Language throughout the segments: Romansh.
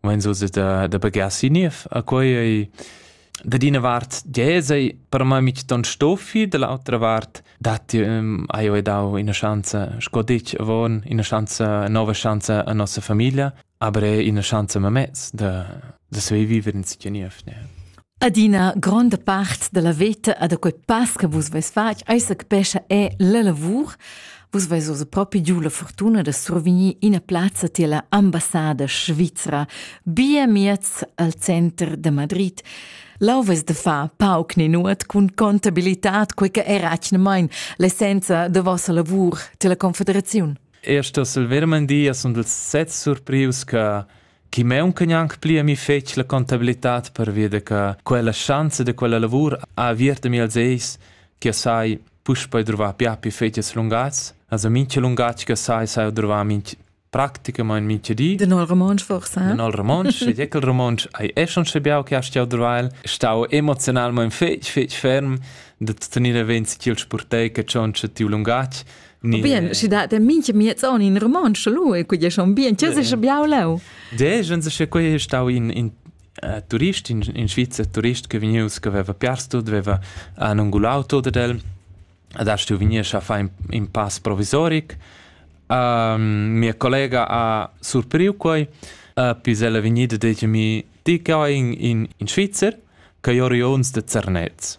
mein so da, da bagher si niev. A quei ei da d'ina vart diesei per me mit ton stoffi, dall'altra vart dat ti um, hai eu dau ina schanza sco ditg avon, ina schanza nova schanza a nossa famiglia, aber è ina schanza mamez da da suivivere in sia niev. Ne? Adina gronda part della veta a da quei pass che vus veis fatg ei se capescha è la lavur. Vus veis oz propi giu la fortuna da survegnir ina plazza tier la ambassada svizra, bia miez al center de Madrid. Lau veis de fa pauc ni nuot cun contabilitad, quei che era atgnamain l'essenza de vossa lavur tier la Confederaziun. Er Stössel Vermandia sunt els sets surprius che chi maunca gnanc pli a mi fetg la contabilitad pervia da che quella schanza da quella lavur ha aviert a mi als eis che sai puspei druvar piapi fetgas lungats also mincha lungatg che sai sai druvar minch praticamain mincha di Den al Romansch forsa? In al romontsch, ed ecel romontsch hai e schon scebiau che hast jau drvail, stau emozionalmain fetg, fetg ferm da tenere vent chil spurtei che schon tiu lungatg, Bien, schi dat der minche miezon in romansch lu e quei schon bien, tgei sei schon biau leu? De, jen se che quei stau in in uh, turist in in Svizzer turist che vegnius che aveva piars tut, aveva han ungulau tot ed el adesso tu venies a fare in, in pass provisoric. Uh, mia collega ha surpriu quei, uh, pis ella vegnida detg mi, ti che in, in, in Svizzer, che io rions de Zernez.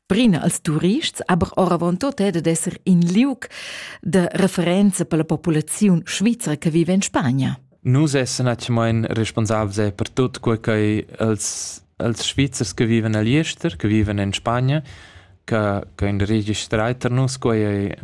Brina als turists, aber oravontut è dad esser in liug de referenza per la populaziun svizra che vive in Spagna. Nus essen atgemain responsabels per tut quei che els, els Svizzers che viven a Liester, che viven in Spagna, che, che in registrai per nus quei è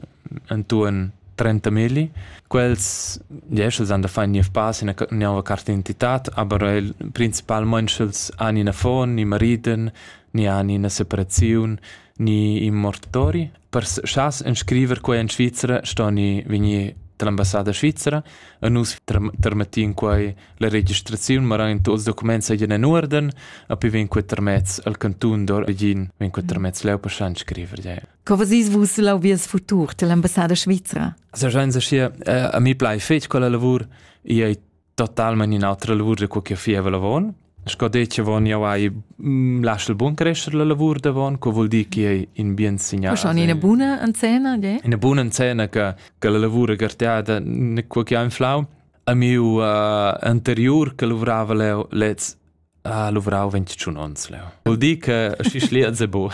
intorno 30 mili. Quels, yes, els han da fare niv pass in nova carte d'identità, aber principalmente els hanno una fon, i mariden, ni han ina separaziun ni in mortori. Per schas inscriver quei en Svizra stoni vegnir dall'ambassada svizera e nus termettin quei la registraziun, ma ran tuts documents egin en uorden, a pi vegn quei termets al cantun d'or egin, vegn quei termets leu per schan scriver. Ja. Co vesis vus l'auvies futur dell'ambassada svizera? Also schein se schi, a mi plai fetg quella lavur, ei totalmain in'altra lavur da co che fieva lavon. Sco detg avon jau hai mm, lasciu bun crescere la lavur davon, co vuol dir che è in bien signal. Schon in buona encena, de? In buona encena che che la lavura garteada ne quo che ha inflau. A miu uh, anterior che lavorava lez Ah, luvrau ventschun onns leu. Vul dir che schi schlia ze bu.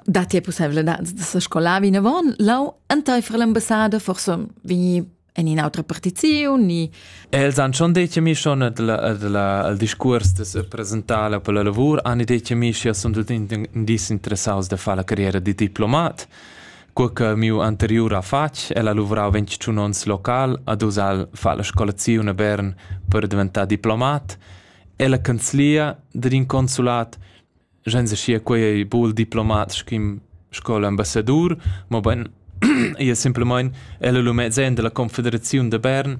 Da ti è possibilità da se scolar vinavon, lau enteifer l'ambassada forse vegni en un'altra partizione ni Els han schon detto mi schon al discurs de se presentare per la lavor, han detto mi che sono tutti indicados da fare la carriera di diplomat. Cur che miu anteriur affar el ha luvrau ventschun onns local ad Usal fa la scolaziun a Bern per diventar diplomat e la canzlia dad in consulat sch'ins aschia quei ei bul diplomat sch'in sco l'ambassadur, mobein ia simplemein el lu mezzen dalla Confederaziun de Bern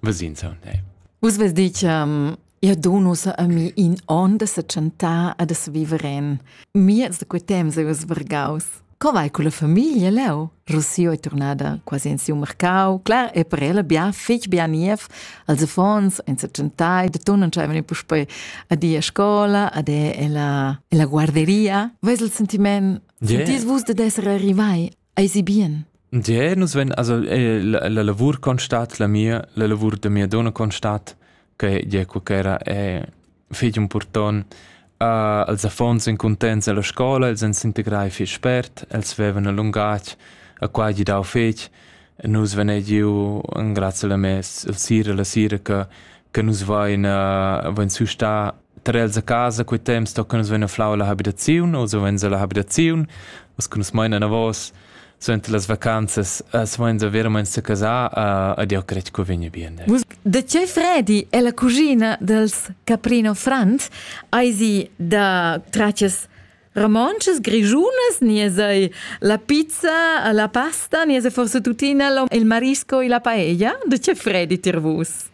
Vesinsa, ne. Vus ves dich, um, io donus a mi in on da se chantar e da se viver en. Miez da quei temps eu svergaus. Co vai con la famiglia leu? Rossio è tornada quasi in siu mercau. Clar, e per ella bia fich bia niev. Als affons, in se chantai, da tu non c'aveva ni puspei a di a scola, ad è ella, ella guarderia. Ves il sentiment? Yeah. Sentis vus da d'essere arrivai? Eisi bien? Ja, nus ven, also eh, la, la lavur constat, la mia, la lavur da mia donna constat, che ja qualchera è fig un porton. Uh, els affons en contents alla scola, els en s'integrai fich spert, els vevan a lungatg, a qua gi dau fetg. Nus ven giu en grazie alla mes, il sira, la sira che, che nus vain, uh, vain su sta Tar els a casa quei temps tocan nus vein a flau la habitaziun o savens ella habitaziun, uss che nus mein anavos suenter las vacanzas svains a veramein secasar ed jau cret co vegn bien. Dai. Vus da tgei fredi è la cugina dels Caprino Franz ai si da traccias romances, grigiunas, ni sei la pizza, la pasta, ni sei forse tuttina il marisco e la paella? Da tgei fredi tir vus?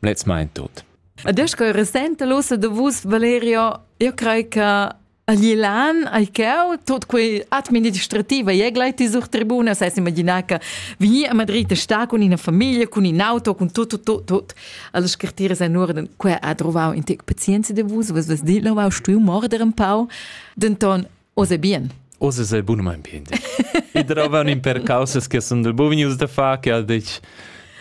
Let's mind tot. Adesso che resente l'ossa de vus Valerio, io crei che a Glilan ai ceu tot quei administrativa e gleit sur tribuna sai imaginar che veni a Madrid a sta con ina famiglia, con in auto, con tot tot tot tot alle scartire sai nur den quei ha trovau in tec pazienza de vus, was was dit lo stui morder un pau. Denton Oz è bien. Oz è bunamain bien. I trovan in per causas che sono del bovinius da fa che ha detto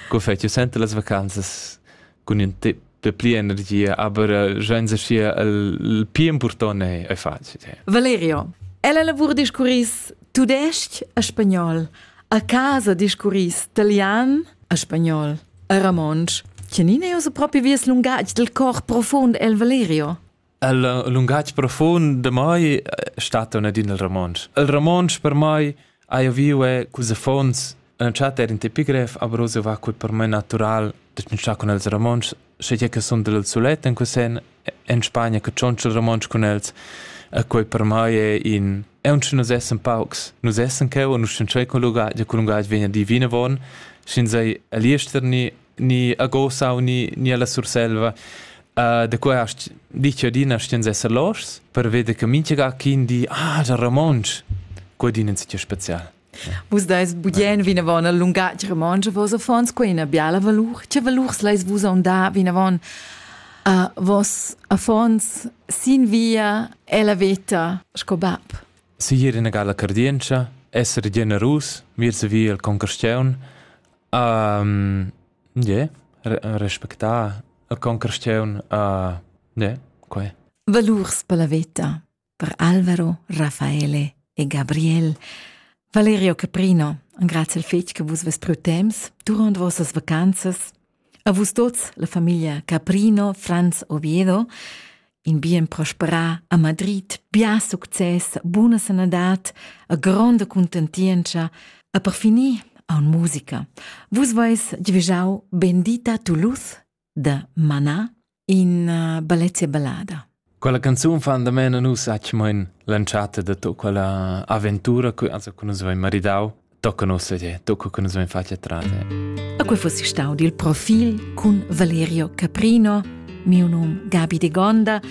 che fece sente las vacanzas con un tip pli energia, aber eh, senza sia il più importante è facile. Valerio, ella lavora discurris tudesc e spagnol, a casa discurris italian e spagnol e ramonsch. Chenine è proprio vies lungatg del cor profond el Valerio? Il lungatg profund de mai stat un adin il romontsch. Il romontsch per mai ha eu viu è cus affons entschat er in tipigref, aber so war quel per mai natural de tschintschar con els romontsch, sche je che son del sulet en quesen en Spagna che tschontscha il romontsch con els, e quei per mai è in e uns nus essen paucs, nus essen cheu und nus sind schon con lungatg, con lungatg vegna divine von, sin sei aliester ni ni a Gosau ni, ni alla Surselva. Uh, da qua hast ditg adina stens esser loschs per veder che minchega quin di ah, già romontsch, quadin in sitio special. Vus dais budien vinavon al lungatg romontsch, vos affons quei ina biala valur. Che valurs leis vus onda vinavon a vos affons sin via e la veta sco bab? Sir ina gala cardientscha, esser generus, vir se via al concastiun, Ie, respectar a concursiun, ie, quai. Valurs per la veta per Alvaro, Raffaele e Gabriel. Valerio Caprino, grazie al fetg che vus vos pro temps durant vossas vacanzas. A vus tots, la famiglia Caprino, Franz Oviedo in bien prosperà a Madrid, bia success, buna sanadad, a gronda contentientscha, a per finir aun musica. Vus vais divigiau Bendita Toulouse da Mana in uh, Balezia Ballada. Quella canzun fan da mena nus acc moin l'entschatta de to quella avventura che also con nus vai maridau tocca nos sedere, tocca che nus vein fatg trate. A quei fossi stau dil profil cun Valerio Caprino, miu num Gabi de Gonda,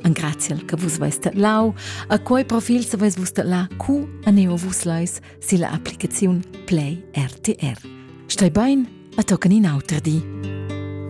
an graziel che vus veis lau, a quei profil se veis vus la cu a neo vus lais si la applicaziun Play RTR. Stai bein, a toccani in auter di.